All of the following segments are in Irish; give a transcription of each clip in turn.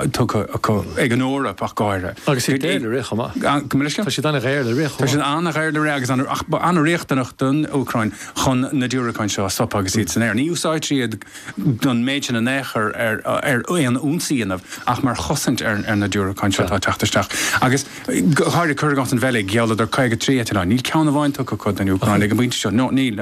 tugtha acu ag an Eoraip ach go háirithe. Agus iad daor le rith chomh maith. Go minic. Tá siad an-dhaor le rith chomh maith. Tá siad an-dhaor le rith agus ach ba an-riachtanach don Úcráin chun na diúracáin seo a stopadh agus iad san aer. Ní úsáidtear iad don méid sin in aon chor ar aon ionsaí a dhéanamh ach mar chosaint ar na diúracáin seo atá ag teacht isteach. Agus go háirithe cuir i gcás an Bheilg, ghealladar 53 eitleán. Níl ceann amháin tugtha acu don Úcráin ag an bpointe seo. Níl.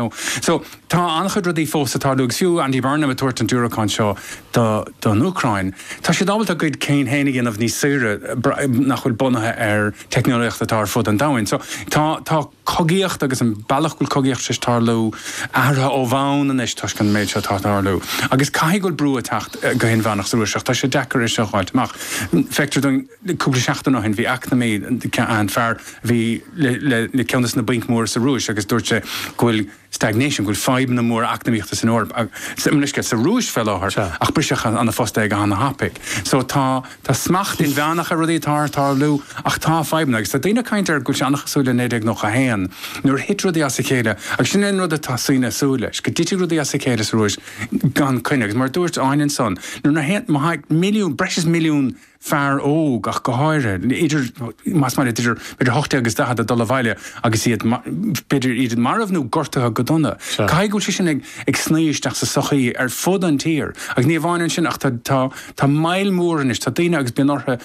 Tá an-chuid rudaí fós ag tarlú agus fiú Andy Burnham ag tabhairt an diúracáin seo don Úcráin, tá siad ábalta a gcuid cinn féin a dhéanamh níos saoire nach bhfuil bunaithe ar teicneolaíocht atá ar fud an domhain. So tá cogaíocht agus an bealach go bhfuil cogaíocht ag tarlú athraithe ó bhonn anois toisc an méid seo atá ag tarlú. Agus caithfidh go bhfuil brú ag teacht go hinmheánach sa Rúis ach tá sé deacair é seo a dh'fháilt amach. Feictear dom cúpla seachtain ó shin bhí eacnamaí, fear a bhí le ceann des na bainc mhóra sa Rúis agus dúirt sé go bhfuil stagnation, go bhfuil fadhbanna móra eacnamaíochta san Eoraip, sa Rúis fé láthair, ach briseadh óna phost é go hana thapaidh. So tá smacht inmheánach ar rudaí atá ag tarlú ach tá fadhbanna agus tá daoine ag caint ar go bhfuil sé ana chosúil le 1991 nuair a thit rudaí as a chéile agus sin é an rud atá daoine ag súil leis, go dtitfidh rudaí as a chéile sa Rúis gan coinne agus mar a dúirt Áine ansan, nuair na haon, má thagann milliún, breis is milliún. fear óg ach go háirithe, idir, más maith leat, idir 18 agus 40, ag dul abhaile agus iad, b'fhéidir, iad marbh nó gortaithe go dona. Caithfidh go bhfuil sé sin ag sní isteach sa sochaí ar fud an tír. Agus ní amháin ansin ach tá moill mhór anois, tá daoine agus bíonn orthu,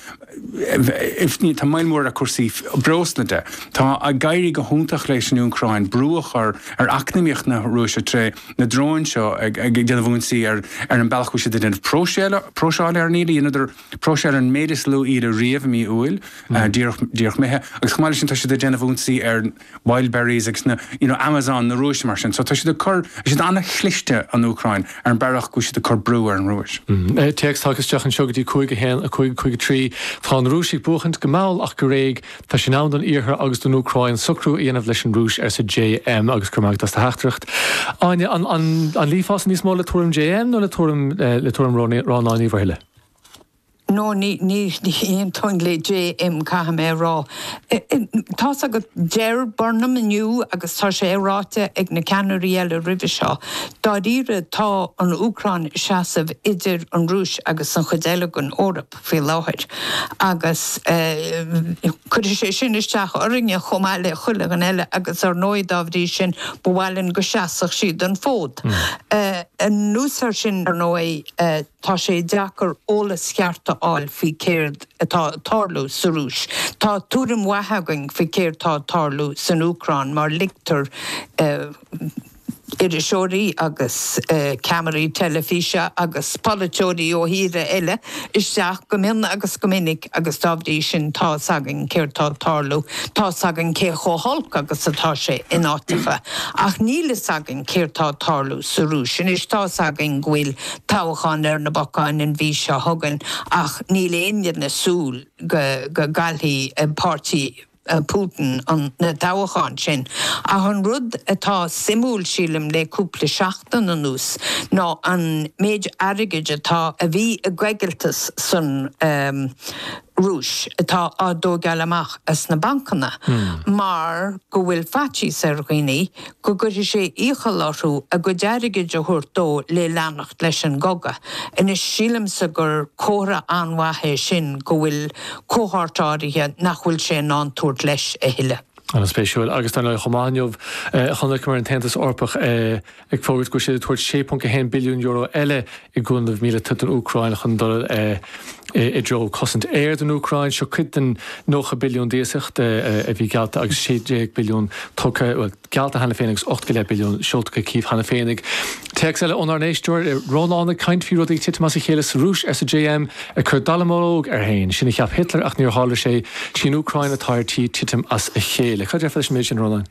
tá moill mhór ar chúrsaí breosla de. Tá ag éirí go hiontach leis an Úcráin brú a chur ar eacnamaíocht na Rúise tré, na dróin seo ag déanamh ionsaí ar an bealach a bhfuil siad ag déanamh próiseála ar an íle. Dheineadar próiseáil ar an méid is lú íle riamh i mí Iúil, díreach imithe, agus chomh maith le sin tá siad ag déanamh ionsaí ar Wildberries agus na, you know, Amazon na Rúise mar sin. So tá siad ag cur, tá siad an-chliste, an Úcráin, ar an bealach go bhfuil siad ag cur brú ar an Rúis. Téacs tagtha isteach anseo go dtí 5 1 5 5 3 Tá na Rúisigh ag buachaint go mall ach go réidh. Tá sé in am don Iarthar agus don Úcráin socrú a dhéanamh leis an Rúis, arsa JM, agus go raibh maith agat as do theachtaireacht. Áine, an, an, an luífeása níos mó le tuairim JM nó le tuairim, eh, le tuairim Róni, Rónáin Uí Mhuirthile? No, ní, ní, ní aontóinn le JM, caithfidh mé a rá. Eh, eh, tá's agat, deir Burnham inniu, agus tá sé ráite ag na ceannairí eile roimhe seo, dáiríre tá an Úcráin ag seasamh idir an Rúis agus an chuid eile den Eoraip. faoi láthair agus cuirfidh sé sin isteach orainne chomh maith le chuile dhuine eile agus ar ndóigh dá bhrí sin ba mhaith linn go seasfadh siad an fód. Anuas ar sin ar ndóigh tá sé deacair eolas ceart a fháil faoi céard atá ag tarlú sa Rúis. Tá tuairim mhaith againn faoi céard tá ag tarlú san Úcráin mar ligtear iriseoirí agus ceamaraí teilifíse agus polaiteoirí ó thíortha eile isteach go mion agus go minic agus dá bhrí sin tá's againn céard tá ag tarlú, tá's againn cé chomh holc agus atá sé in áiteacha, ach níl fhios againn céard tá ag tarlú sa Rúis. Anois tá's againn go bhfuil toghchán ar na bacáin an mhí seo chugainn ach níl éinne ag súil go gcaillfidh páirtí Putin na toghcháin sin, ach an rud atá suimiúil, sílim, le cúpla seachtain anuas ná an méid airgid atá, a bhí i gcoigilteas san Rúis, atá á thógáil amach as na bancanna, mar go bhfuil faitíos ar dhaoine go gcuirfidh sé iachall orthu a gcuid airgid a thabhairt dó le leanacht leis an gcogadh. Anois, sílimse gur comhartha an-mhaith é sin go bhfuil cohórt áirithe nach bhfuil sé in ann a thabhairt leis a thuilleadh. An-spéisiúil. Agus dar ndóigh, chomh maith inniu, chonaiceamar an tAontas Eorpach ag fógairt go bhfuil siad ag tabhairt €6.1 billiún eile i gcúnamh míleata don Úcráin chun dul i dtreo cosaint aeir don Úcráin. Seo cuid den 90 billiún d'iasacht a bhí geallta agus 16 billiún tugtha, bhuel, geallta cheana féin agus ocht go leith billiún seolta go Cív cheana féin. Téacs eile ónár n-éisteoir, Rónán ag caint faoi rudaí ag titim as a chéile sa Rúis, arsa JM, ag cur dallamullóg air féin. Sin a cheap Hitler ach níor tharla sé. Sí an Úcráin atá ar tí titim as a chéile. Cad a déarfá leis an méid sin, a Rónáin?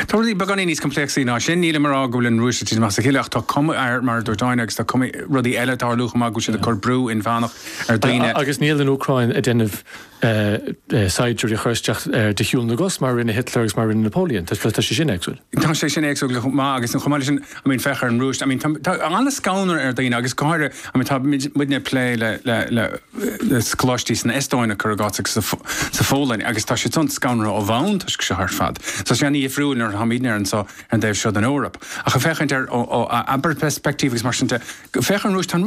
Tá rudaí beagáinín níos compléacsaí ná sin. Nílim ag rá go bhfuil an Rúis ag titim as a chéile ach tá cuma air, mar a dúirt Áine, agus tá cúpla rudaí eile ag tarlú chomh maith, go bhfuil siad ag cur brú inmheánach ar dhaoine. Agus níl an Úcráin ag déanamh saighdiúirí a chur isteach de shiúl na gcos mar a rinne Hitler agus mar a rinne Napoleon. Tá sé sin éagsúil. Tá sé sin éagsúil chomh maith agus chomh maith leis sin, I mean, féach ar an Rúis. I mean, tá ana-scanradh ar dhaoine agus go háirithe, I mean, tá muidne ag plé le, le, le, le coláistí san Eastóin cuir i gcás agus sa Phólainn agus tá siadsan scanraithe ó bhonn toisc seo ar fad. Tá sé an-dhifriúil nuair a táimidne anseo ar an dtaobh seo den Eoraip. Ach ag féachaint ar ó abair perspective agus mar sin de, féach ar an Rúis, tá an